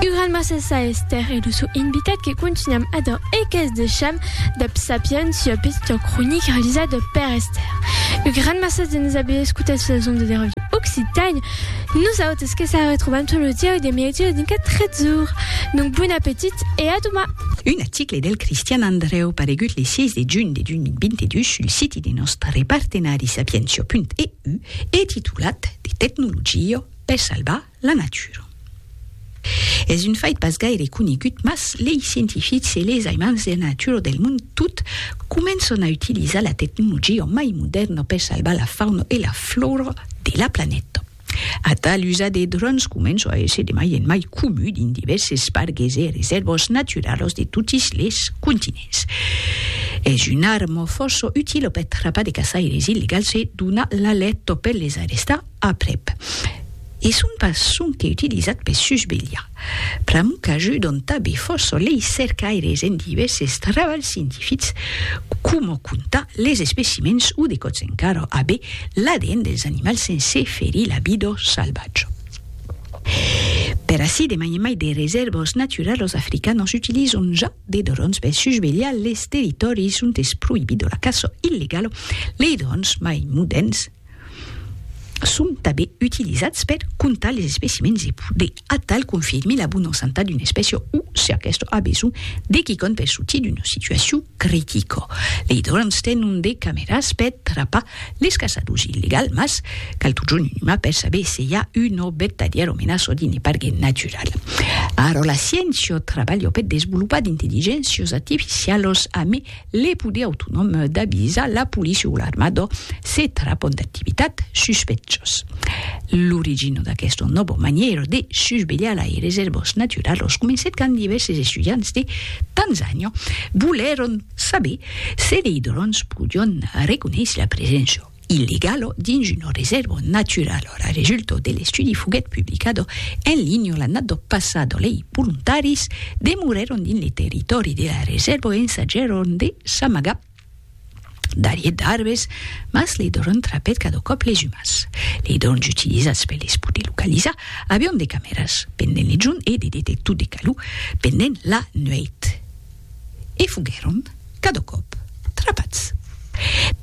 Un gran massas a Esther e lo sò invitat que contunham adan e qu'es de cham dab Sapiens sua petita cronica realizada per Esther. Un gran massas de nos aver escutat sus las ondas de Radio Occitània. Nosautas que se retrobam tot lo diaus de mièg ora dincat 13 ora. Donc bon apetit e a doman! Un article del Cristian Andreu paregut le 6 de junh de 2022 sul siti de nòstre partenari sapientia.eu e titulat De tecnologia per salvar la natura. Es un fait pas gaire conegut mas lei scientifics e les aimants de la natura del mond tot començan a utilizar la tecnologia mai modèrna per salvar la fauna e la flora de la planeta. Atal usat de dròns comença a èsser de mai en mai comu dins divèrses pargues e resèrvas naturalas de totes les continents. Es una arma fòrça utila per trapar de caçaires illegals e donar l'alèrta per les arrestar Aprèp. E son pas sonque utilizat per susvelhar. Pr'amor qu'ajudan tanben fòrça leis cercaires en divèrses trabalhs scientifics, coma comptar les especimèns o de còps encara aver l'ADN dels animals sense ferir la vida salvatja. Per ací demanhem mai de resèrvas naturalas africanas utilizant ja de dròns per susvelhar les territòris ont es proïbida la caça illegala, lei dròns mai modèrns, son tanben utilizats per comptar les especimèns e poder atal confirmir la bona santat d'una espècia o, se aquesta a besonh de quicòm per sortir d'una situacion critica. Lei dròns tenon de camèras per trapar les caçadors illegals, mas cal totjorn un uman per saber se i a una vertadièra menaça dins le pargue natural. Ara la sciéncia trabalha per desvolopar d'intelligéncias artificialas amé Le poder autonòm d'avisar la polícia o l'armada se trapon d'activitat suspecciós. L'origina d'aquesta nòva manièra de susvelhar lai resèrvas naturalas comencèt quand divèrses estudiants de Tanzània volèron saber se lei dròns podián reconéisser la preséncia illegalo dins una resèrva naturala. Lo resultat de l'estudi foguèt publicado en linha l'annada passada. Lei volontaris demorèron dins le territòri de la resèrva e ensajèron de s'amagar darrièr d'arbres, mas le dròn trapèt cada còp les umans. Lei dròns utilizats per les poder localizar avián de camèras pendent le jorn e de detectors de calor pendent la nuèit. e foguèron cada còp trapats.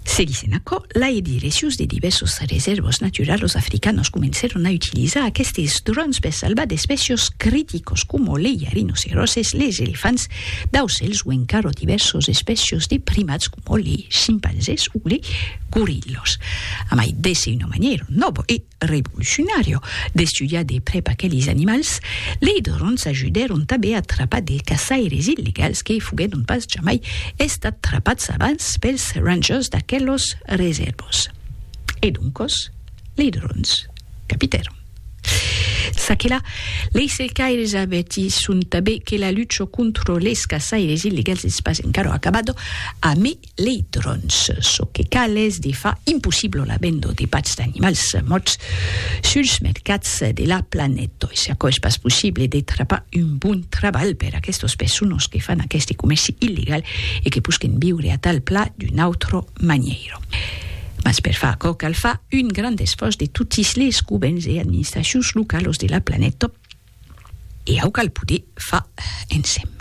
Se dissent aquò, lai di resius de divèrsas resèrvas naturalas africanas comencèron a utilizar aquestes dròns per salvar d'espècias criticas coma lei rinoceroses, leis elefants, d'aucèls o encara divèrsas espècias de primats coma lei chimpanzés o lei gorillas. A mai d'èsser una manièra nòva e. revolucionària d'estudiar de prèp aqueles animals, lei dròns ajudèron tanben a trapar de caçaires illegals que foguèron pas jamai estats trapats abans pels rangers d'aquelos resèrvas. E doncas, lei dròns capitèron. Ça que la, lei cercaires avertisson tanben que la lucha contra les caçaires illegals es pas encara acabada, a mai lei dròns. Çò que cal es de far impossiblo la vendo de patz d'animals mòrts suls mercats de la planeta. E se aquò es pas possible, de trapar un bon trabalh per aquestos personos que fan aqueste comèrci illegal e que posquen viure a tal pla d'una autra manièira. Mas per far aquò cal far un grand esfòrç de totis les govèrns e administracions localos de la planeta. E au cal poder far ensèm.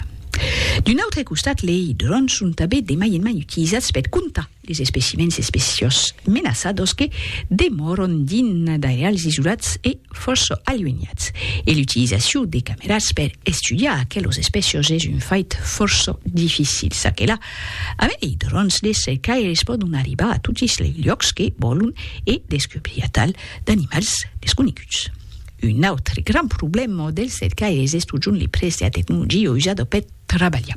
D'un autre costat, lei dròns son tanben de mai en mai utilizats per comptar les especimèns especiós menaçados que demòron dins d'airals isolats e fòrça aluenhats, e l'utilizacion de cameras per estudiar aquelos especiós es un fait fòrça dificil. Ça que la, a lei dròns de cercaires pòdon arribar a totis lei luòcs que vòlon e descobrir atal d'animals desconeguts. Un autre grand problèma dels cercaires es totjorn li prètz de la tecnologia usada per trabalhar.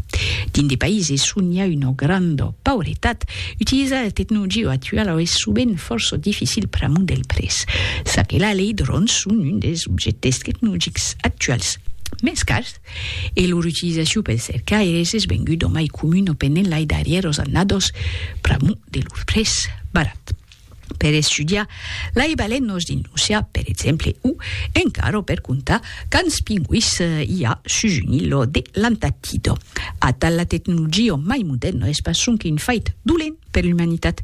Dins de païses on i a una granda pauretat, utilizar la tecnologia actuala es sovent fòrça dificil pr'amor del prètz. Ça que la, lei dròns son un dels objèctes tecnologics actuals mens cars e lor utilizacion pels cercaires es venguda mai comuna pendent lai darrièras annadas pr'amor de lor prètz barat. per estudiar lai balenos dins l'ocean per exemple o encara per contar quants pingüis i a sus un ilo de l'Antartida. Atal la tecnologia mai moderna es pas sonque un fait dolent per l'umanitat,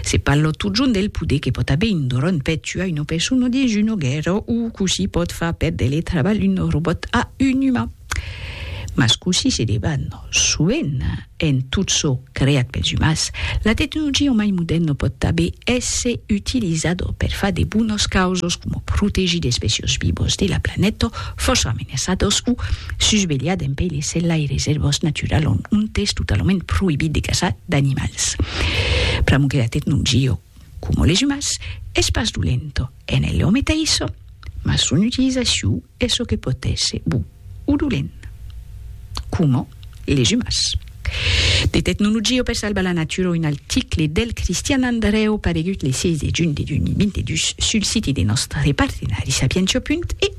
se parla totjorn del poder que pòt aver un dron per tuar una persona dins una guèrra o cossí pòt far perdre le trabalh un robòt a un uman. Mas cossí se debat soent en tot çò creat pels umans, la tecnologia o mai modèrna pòt tanben èsser utilizada per far de bonas causas coma protegir d'espècias vivas de la planeta fòrça amenaçadas o susvelhar dempuèi les sèlhai resèrvas naturalas ont es totalament proïbit de caçar d'animals. Pr'amor que la tecnologia Como les umans, es pas dolento, en el òme t'aiçò, mas son utilizacion es çò que pòt èsser bon o dolent. Como les umans. De tecnologia o per salvar la natura un article del Cristian Andrèu paregut le 16 de junh de 2022 sul siti de nòstre partenari Sapientia. EU.